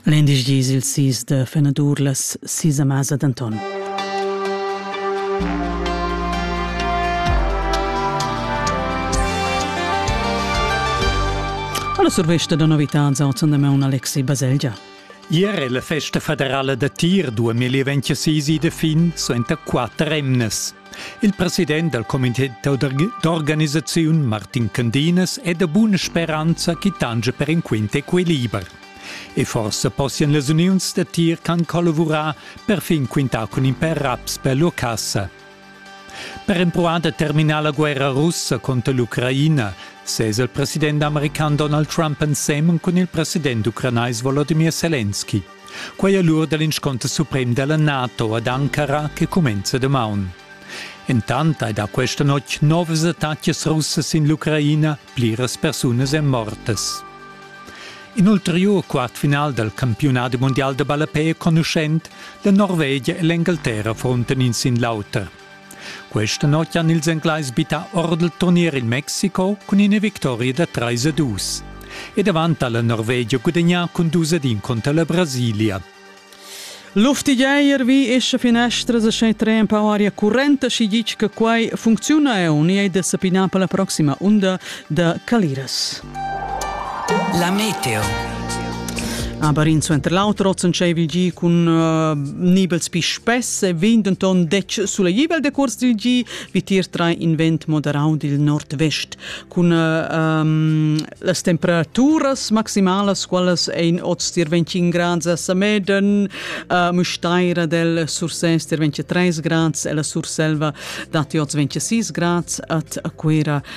L'indisch dis il sis de fenadur las sis a masa d'Anton. La survesta da novitads autan da meun Alexi Baselgia. Ier è la festa federala da tir 2026 de fin suenter quatter emnes. Il president dal comité d'organisaziun Martin Candinas è da buna speranza chi tangia per in quint equiliber. E forsa possian las uniuns da tir can collavurar per fin quintar cun in per raps per lur cassa. Per empruar da terminar la guerra russa contro l'Ucraina sesa il president american Donald Trump ensemen cun il president ucranais Volodymyr Zelensky. Quei è l'ur dell'insconter suprem della NATO ad Ankara che cumenza damaun. Intant hai da questa notg novas attacas russas in l'Ucraina, pliras persunas èn mortas. In ulteriur quartfinal dal campionat mondial da ballapè è conuschent, la Norvegia e l'Engalterra frontan in sin l'auter. Questa notg han ils Englais bittà or dal turnier il Mexiko cun ina victoria da 3 a 2. E davant ha la Norvegia gudagnà cun 2 ad 1 conter la Brasilia. Luftigeier vi esce finestras e schei tre empau aria currenta si ditg che quai funcziuna eu ni ei da sapina per la proxima unda da Caliras. La meteo. Aber in suenter l'auter ozen tscheivi gi cun uh, nibels pi spess e vegn denton dec sulegibel de curs dil gi vitir tra in vent moderau dil nord-vest cun uh, um, las temperaturas maximalas qualas ein oz tier 25 grads a Sameden uh, Musteira del Sursès tier 23 grads e la Surselva dati oz 26 grads at a Quera